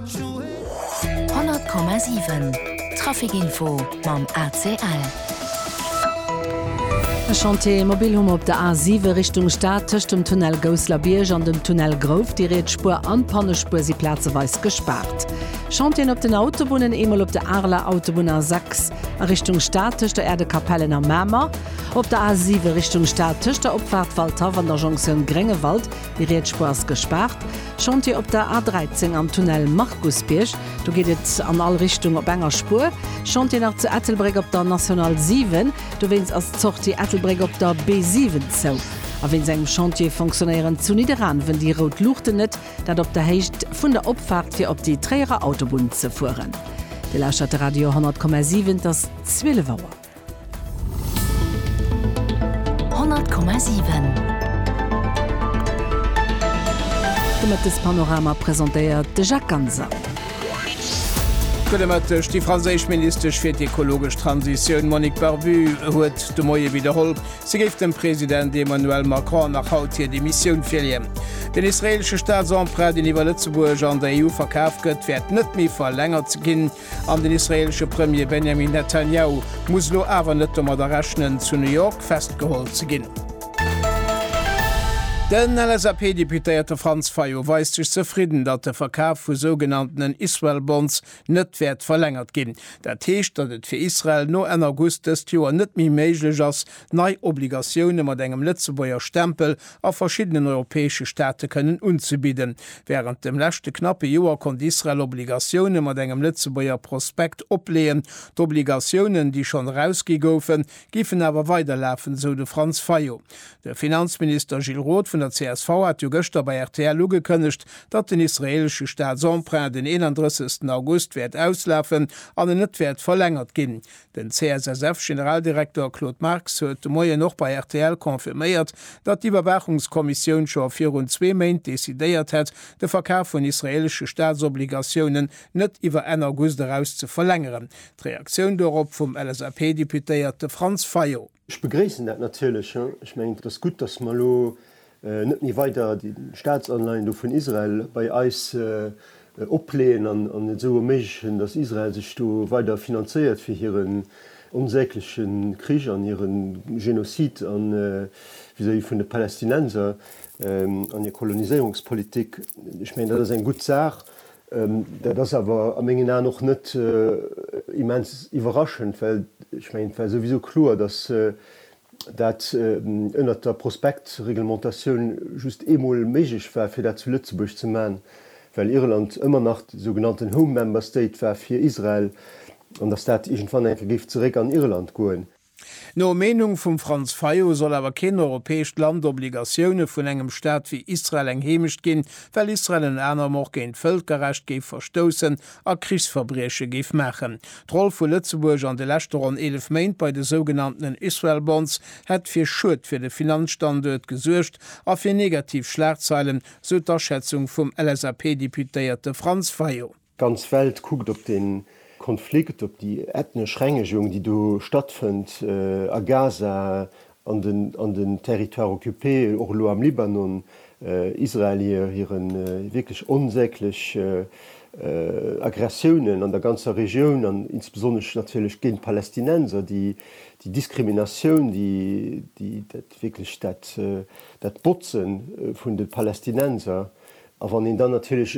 100,7 Trafic Info mam ACL. E Chantier mobil hu mer op der A7 Richtung Stad, tëscht dem Tunnel Gousslerbierg an dem Tunnel Grouft. Déi riets Spuer an d'Pannespuer si plazeweis gespaart. Chantier'en op den Autobunnen, eemol op der Areler Autobunn A6 a Richtung Stad tëscht der Erdekapellen a Mamer, op der A7 Richtung Stad tëscht der Opfaart Waldhaff an der Jonktioun Gréngewald Déi Rietsspuer ass gespaart. Chantier op der A13 am Tunnel Markusbierg. Do geet et an all Richtung op enger Spuer. Chantier nach zu Ettelbréck op der National 7. Dowéinst ass d'Sortie Ettelbréck op der B7 zou. A wéinst engem Chantier fonctionnéieren zu Nidderaanwen déi rout Luuchten net. Dat op der Héicht vun der Opfaart fir op déi Tréierer Autobunn ze fueren. Dir lauschtert de Radio 100,7. Et ass 12 Auer. De Mëttespanorama presentéiert de Jacques Ganser. Gudde Mëtteg. Déi franséisch Ministesch fir d'ekologesch Transitioun Monique Barbue huet de Moie widderholl, si géif dem President Emmanuel Macron nach haut hir Demissioun virleeën. Den israeelesche Staatsemprunt, deen iwwer Lëtzebuerg an der EU verkaf gëtt, wäert net méi verlängert ginn. An den israeelesche Premier Benjamin Netanjahu muss elo awer net domadder rechnen, zu New York festgeholl ze ginn. Den LSAP-Deputéierte Franz Fayot weist sech zefridden, datt de Verkaf vu sougenanntenen Israel Bonds net wäert verlängert ginn. Dat heescht, datt et fir Israel no Enn August dëst Joer net méi méiglech ass, nei Obligatioune mat engem Lëtzebuerger Stempel a verschiddenen europäesche Staate kënnen unzebidden. Wärend dem leschte knappe Joer konnt Israel Obligatioune mat engem Lëtzebuerger Prospekt opleeën. D'Obligatiounen, déi schonn erausgi goufen, géifen awer weiderlafen, esou de Franz Fayot. De Finanzminister Gilles Roth vun der csv hat jo gëschter bei rtl ugekënnegt, datt den israeelesche Staatsemprunt den 31. August wäert auslafen an en net wäert verlängert ginn. Den CSSF-Generaldirekter Claude Marx huet de Moien och bei rtl confirméiert, datt d'Iwwerwaachungskommissioun scho virun zwee Méint decidéiert hätt, de Verkaf vun israeelesche Staatsobligatiounen net iwwer Enn August eraus ze verlängeren. D'Reaktioun dorop vum LSAP-Deputéierte Franz Fayot. Ech begréissen dat natierlech. Ech mengen, et ass gutt, datt mer elo net méi weider déi Staatsanleihen do vun Israel bei eis opleeën an et esou erméiglechen, datt Israel sech do weider finanzéiert fir hiren onsägleche Krich an hire Genozid vis-à-vis vun de Palästinenser an hir Koloniséierungspolitik. Ech mengen, dat ass eng gutt Saach. Dat ass awer a mengen Aen och net immens iwwerraschend, well ech mengen, et war souwisou kloer, datt dat ënnert der Prospektreglementatioun just eemol méiglech war, fir dat zu Lëtzebuerg ze maachen, well Irland ëmmer nach de sougenannten Home Member State war fir Israel an datt dat iergendwann eng Kéier géif zeréck an Irland goen. No Meenung vum Franz Fayot soll awer keen europäescht Land Obligatioune vun engem Staat wéi Israel eng Heemecht ginn, well Israel ënner anerem och géint d'Vëlkerrecht géif verstoussen a Krichsverbrieche géif maachen. D'Roll vu Lëtzebuerg an de leschte ronn 11 Méint bei de sougenanntenen Israel Bonds hätt fir Schued fir de Finanzstanduert gesuergt a fir negativ Schlagzeilen, sou d'Aschätzung vum LSAP-Deputéierte Franz Fayot. D'ganz Welt kuckt op dee Konflikt, op déi ethnesch Rengegung, déi do stattfënnt a Gaza, an den Territoires occupés, och elo am Libanon. Israel hire wierklech onsäglech Aggressiounen an der ganzer Regioun an insbesonnesch natierlech géint d'Palästinenser, déi Diskriminatioun, déi dat wierklech dat Botzen vun de Palästinenser. A wann een dann natierlech